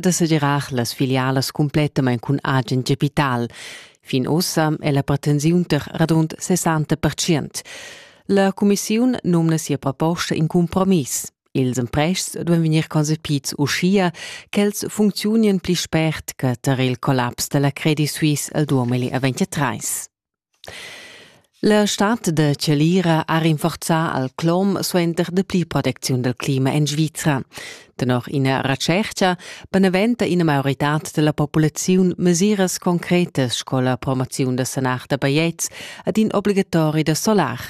da sedirar las filialas cumplettamain cun agen capital. Fin ossa è la pretensiun tar radund 60 La cumissiun nomna sia proposta in compromiss. Ils emprests duan vegnir concepids uschia ch'els funcziunien pli spert che tar il collaps da la Credit Suisse al 2023. La stad da chalira ha rinforzà al clom suenter dapli protecziun dal clima en Svizra. Tenor ina retschertga beneventa ina maioritad da la populaziun mesiras concretas sco la promoziun da sanar da bajetgs ed in obligatori da solar.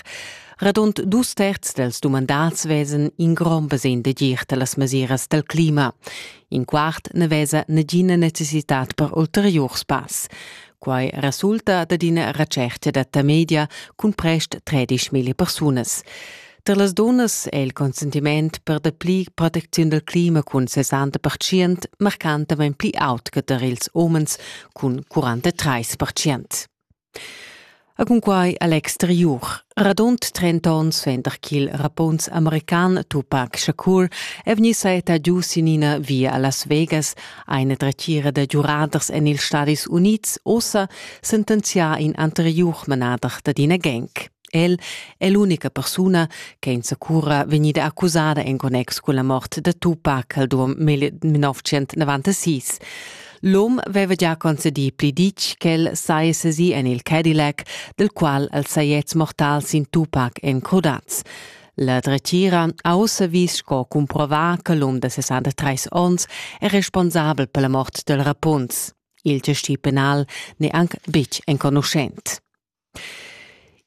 Radund dus terz dals dumandads vesan in grond basegn d'agir da las mesiras dal clima. In quart na vesa nagina necessitad per ulteriur spass. Quai resulta dad ina retschertga da Tamedia cun prest tredischmilli persunas. Tar las dunnas è il consentiment per dapli protecziun dal clima cun 60 percient marcantamain pli aut che tar ils umens cun 43 percient. E cunquai a l'exteriur. Radund trenta onns suenter ch'il rappunz american Tupac Shakur è vegnì saetta giu sin ina via a Las Vegas, ha ina dretgira da giuraders en ils Stadis Unids ussa sentenzià in anteriur manader dad ina gang. El è l'unica persuna che insacura vegnida accusada en connex cun la mort da Tupac al 1996. L'um veva gia concedì pli ditg ch'el sai sesì en il Cadillac, del qual els sajets mortals in Tupac encrudats. La dretgira ha ussa vis sco cumprovà che l'um de 63 onns è responsabel per la mort del Rapunz. Il gestì penal n'è anc betg enconuschent.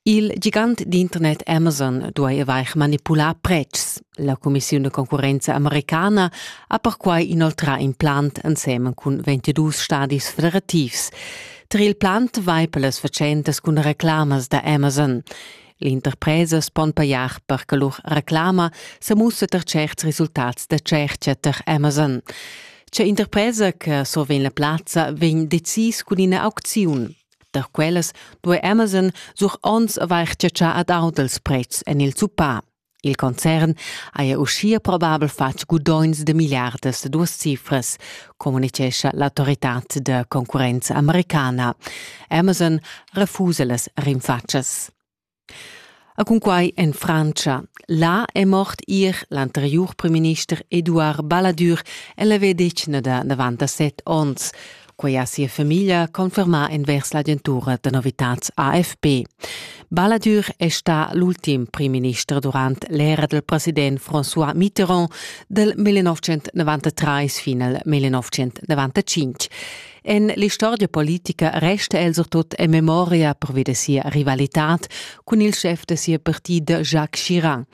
Il gigant d'internet Amazon duai avair manipulà pretschs. La cumissiun da concurrenza americana ha perquai inoltrà in plant ensemen cun 22 stadis federativs. Tar il plant vai per las fatschentas cun reclamas da Amazon. L'interpresas pon pajar per che lur reclama sa mussa tar certs resultats da tschertga tar Amazon. C'è interpresa che survegn la plazza vegn decis cun ina aucziun. Da quellas duai Amazon sur onns avair chatschà ad aut els pretschs en il zuppà. Il concern haja uschia probabel fatg gudogns de miliardas de duas cifras, communicescha l'autoritad de concurrenza americana. Amazon refusa las rinfatschas. A cunquai en Frantscha. Là è mort ir l'anteriur primminister Eduard Balladur. El aveva detg da davant a set onns. Quei ha sia famiglia confermà envers l'agentura da novitads AFP. Balladur è stà l'ultim primminister durant l'era del president François Mitterrand dal 1993 fin al 1995. En l'istorgia politica resta el surtut en memoria pervi da sia rivalitad cun il schef da sia partida Jacques Chirac.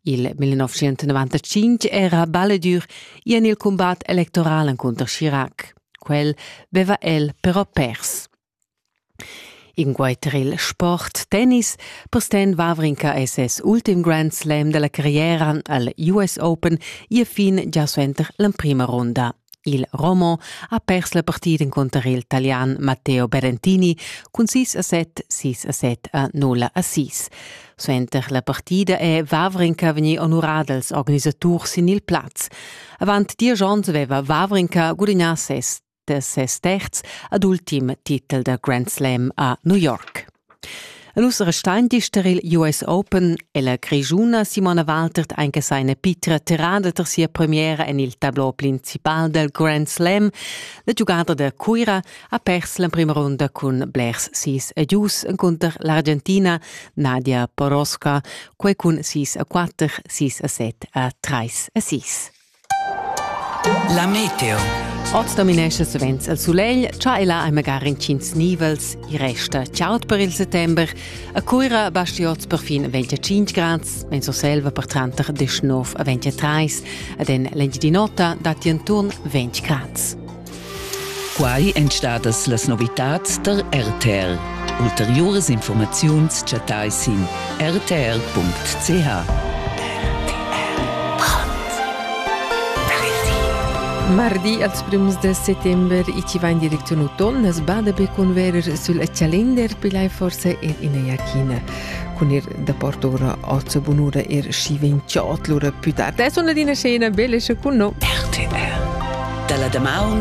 Il 1995 era Balladur i en il combat electoral encunter Chirac. Quel beva el però pers. In guaitrel sport tennis Postin Wawrinka è ses ultim Grand Slam da la carriera al US Open ì fin gia suenter l'emprima runda. Il Romo ha pers la partida encunter il Talian Matteo Berentini cun 6 a 7, 6 a 7 a 0 a 6. Suenter la partida è Wawrinka vegnì onurà dals organisaturs sin il plaz. Avant diesch onns aveva Wawrinka gudagnà ses de ses terz ad ultim titel da Grand Slam a New York. En us restein dister il US Open e la grigiuna Simona Waltert anche seine pitra tirada ter sia premiera en il tableau principal del Grand Slam. La giugada da Cuira ha pers la prima runda cun Blairs sis e gius encontro l'Argentina Nadia Poroska, quei cun 6 a 4, 6 a 7 a 3 a 6. La meteo. Oz dominescha savens il sulegl, cha e là hai magari intgins nivels, i resta chaud per il settember. A Cuira basti oz per fin 25 grads, en Surselva per tranter 19 a 23, ed en l'Engiadin'Ota datti inturn 20 grads. Quai èn stadas las novitads tar RTL. Ulteriuras informaziuns chattai sin rtr.ch. Mardi als prüms de settember i ci va in direction ton as bada per converer sul calender pilai forse ed in iachina cun ir da portora ozzo bunura er schi vinciot lura più tardi è una scena bella con no RTL dalla Damaun